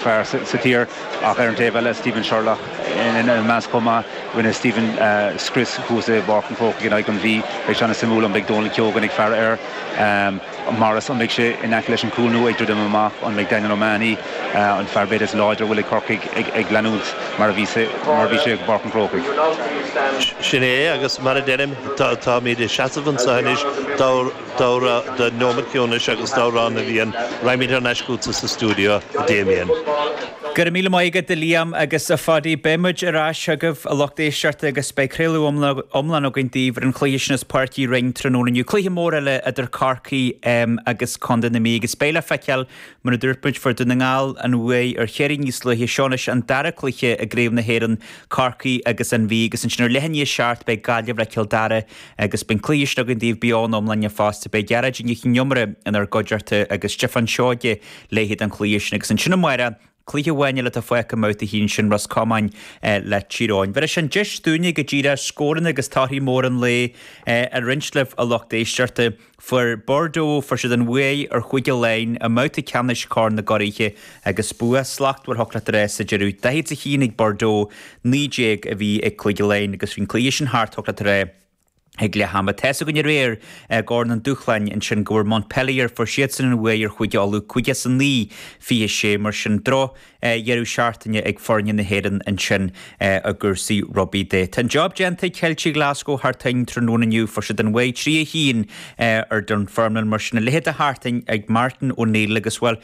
fearr sa tír. Ach ar an taobh eile, Stephen Sherlock ina measc chomh maith. Rinne Stephen scrios thuas i bPáirc an Chrócaigh in aghaidh an Mhí. Beidh sé an-suimiúil an mbeidh Donal Keogan ag faire air. Morris, an mbeidh sé in aice leis an gcúl nó ag druidim amach? An mbeidh Daniel O'Mahony, an fear b'fhéidir is láidre a bhfuil ag Corcaigh, ag leanúint mar a bhí sé i bPáirc an Chrócaigh? Sin é é agus mar a deirim, táimid ag seasamh anseo anois dár. Dara, do nóiméad ciúnais agus d'Amhrán na bhFiann, raghaimid thar n-ais chugatsa sa stiúideo, a Damien. Go raibh míle maith agat, a Liam agus a Phadaí. Beidh muid ar ais chugaibh, a lucht éisteachta, agus beidh craoladh iomlán againn daoibh ar an chluiche sin as Páirc Uí Rinn tráthnóna inniu. Cluiche mór eile idir Corcaigh agus Contae na Mí agus beidh le feiceáil Mar a dúirt muid fuair Dún na nGall an bhuaidh ar Chiarraí níos luaithe, seo anois an dara cluiche i gcraobh na hÉireann, Corcaigh agus An Mhí, agus ansin ar leath i ndiaidh a seacht beidh Gaillimh le Cill Dara, agus beidh an cluiche sin againn daoibh beo ina iomláine fosta. Beidh Gearóidín Nic an Iomaire inár gcuideachta agus Stiofán Seoige léi don chluiche sin. Agus ansin amárach, cluiche amháin eile atá fágtha i mbabhta a haon, sin Ros Comáin le Tír Eoghain. Bheir sé an deis dúinne go díreach scóranna agus torthaí móra an lae a roinnt libh a lucht éisteachta. Fuair Bordeaux, fuair siad an bhuaidh ar Chúige Laighean i mbabhta ceannais Chorn na gCuraithe agus bua slachtmhar thiocfadh leat a rá sa deireadh. Daichead is a haon ag Bordeaux, naoi déag a bhí ag Cúige Laighean agus bhí an cluiche sin thart thiocfadh leat a rá ag leath ama. Tá's againn aréir i gCorn an Dúshláin ansin go bhfuair Montpellier, fuair siadsan an bhuaidh ar Chúige Uladh, caoga is a naoi, fiche sé, mar sin droch, dheireadh seachtaine ag foirne na hÉireann ansin i gcúrsaí rugbaí de. Tá an job déanta ag Ceiltigh Ghlaschú thar toinn tráthnóna inniu. Fuair siad an bhuaidh 3 1 ar Dunfermline. Mar sin, a leithéid de thar toinn ag Martin O'Neill agus, bhuel,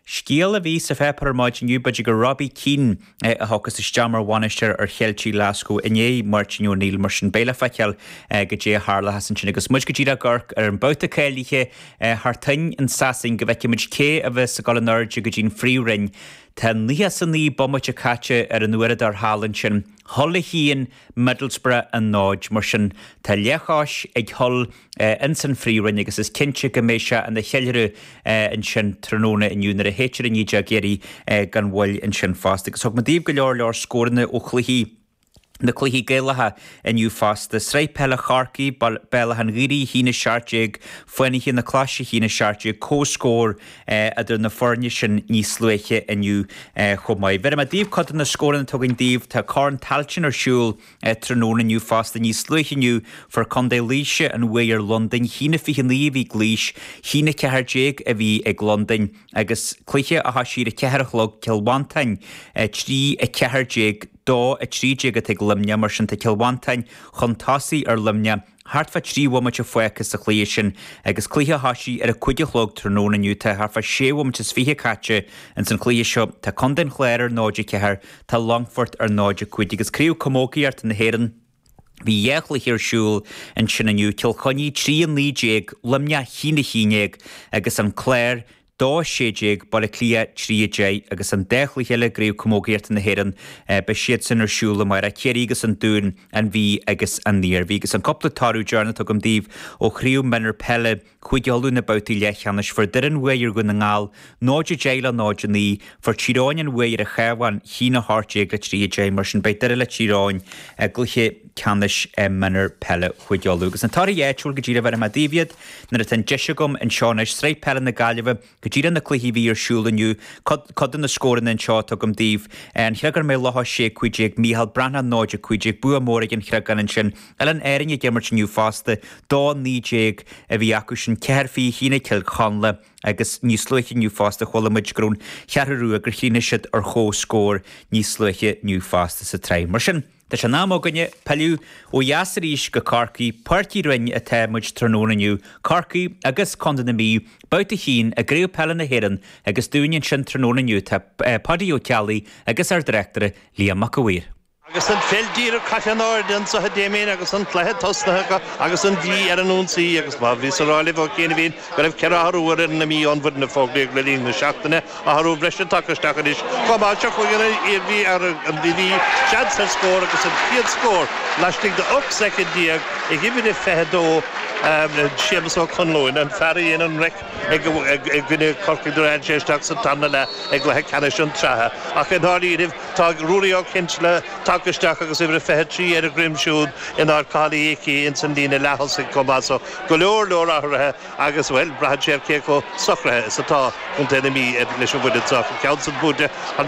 scéal a bhí sa pháipéar ar maidin inniu, b'fhéidir gur Robbie Keane a thiocfas isteach mar bhainisteoir ar Cheiltigh Ghlaschú i ndiaidh Martin O'Neill. Mar sin, beidh le feiceáil go dté a tharlachas ansin agus muid go díreach ag amharc ar an mbabhta cáilithe. thar toinn in Sasain go bhfeicfimid cé a bheas ag dul in airde go dtí'n phríomhroinn. Tá 99 bomaite caite ar an uaireadóir thall ansin. Hull a haon Middlesbrough a náid. Mar sin, tá leathchois ag Hull ins an phríomhroinn agus is cinnte go mbeidh sé ina cheiliúradh ansin tráthnóna inniu nuair a shéidtear an fhideog dheiridh gan mhoill ansin fosta. Agus thug muid daoibh go leor leor scóranna ó chluichí. Na cluichí Gaelacha inniu fosta. Sraith Peile Chorcaí, Béal Átha'n Ghaorthaidh, 1, 17, Fánaithe na Claise, 1, 17, Comhscór idir na foirne sin níos luaithe inniu chomh maith. Bheir muid daoibh cuid de na scóranna atá againn daoibh. Tá Corn Tailteann ar siúl tráthnóna inniu fosta. Níos luaithe inniu fuair Condae Laoise an bhuaidh ar Londain. 1, 29 a bhí ag Laois. 1, 14 a bhí ag Londain. Agus cluiche a thosaigh ar a 4 a chlog, Cill Mhantáin 3, 14, Dó, 13 atá ag Luimneach mar sin tá Cill Mhantáin chun tosaigh ar Luimneach thart fá trí bhomaite fágtha sa chluiche sin agus cluiche a thosaigh ar a cúig a chlog tráthnóna inniu tá thart fá sé bhomaite is fiche caite ins an chluiche seo tá Contae an Chláir ar 0-4 tá Longfort ar 0-5 agus Craobh Camógaíochta na hÉireann Bhí dhá chluiche ar siúl ansin inniu, Cill Chainnigh 3 19 Luimneach a haon a haon déag agus An Clár 2 16 Baile Átha Cliath 3 10 agus an dá chluiche eile i gCraobh Camógaíochta na hÉireann beidh siadsan ar siúl amárach, Ciarraí agus An Dún, An Mhí agus An Iarmhí. Agus an cúpla toradh deireanach tugaim daoibh ó Chraobh Mionúr Peile. Chúige Uladh na babhtaí leathcheannais fuair Doire an bhuaidh ar Dhún na nGall 0 10 le 0 9, fuair Tír Eoghain an bhuaidh ar an Chabhán, a haon 18 le 3 10. Mar sin beidh Doire le Tír Eoghain i gcluiche ceannais Mionúir Peile Chúige Uladh. Agus na torthaí áitiúil go díreach bhéarfaidh mé daoibh iad nuair atá an deis agam anseo anois, Sraith Peile na Gaillimhe, Go díreach na cluichí a bhí ar siúl inniu, cuid de na scóranna anseo a tugaim daoibh. An Chreagán Maigh Locha 6, 15, Mícheál Breathnach 0, 15, bua mór ag An Chreagán ansin. Oileáin Árann ag imirt inniu fosta, 2, 19 a bhí acu sin, ceathair fiche a haon ag Cill Chonla agus níos luaithe inniu fosta chuala muid go raibh an Cheathrú Rua, gur chríochnaigh siad ar chomhscór níos luaithe inniu fosta sa tsraith. Mar sin. Tá sé in am againne pilleadh ó dheas arís go Corcaigh, Páirc Uí Rinn atá muid tráthnóna inniu, Corcaigh agus Contae na Mí, babhta a haon i gCraobh Peile na hÉireann agus dúinne ansin tráthnóna inniu tá Paddy Ó Ceallaigh agus ár dtráchtaire Liam Mac a' Mhaoir. Agus an pheil díreach caite in airde anseo Damien agus an cluiche tosnaithe acu agus an Mhí ar an ionsaí agus mar a bhíos a rá libh ó chianaibhín go raibh ceithre athrú ar fhoireann na Mí ón bhfoireann a fógraíodh le linn na seachtaine, athrú breise tagtha isteach anois chomh maith, seo chugainn an Iarmhí ar an Mhí, seans ar scór agus an chéad scór laistigh de 18 soicind ag uimhir a 22, Séamus Ó Conluain, an fear a dhein an raic i gcoinne Chorcaí nuair a tháinig sé isteach sa tarna leath i gcluiche ceannais an tSratha. Ach i ndáiríribh, tá Ruairí Ó Cinnseala tagtha isteach agus uimhir a 23 ar a dhroim siúd in áit Chathail Uí Icí ins an líne leath-thosaigh chomh maith so, Go leor leor athruithe agus, bhuel, braitheann sé ar cé chomh socraithe is atá Contae na Mí leis an bhfoireann seo. Ceann san bude, an.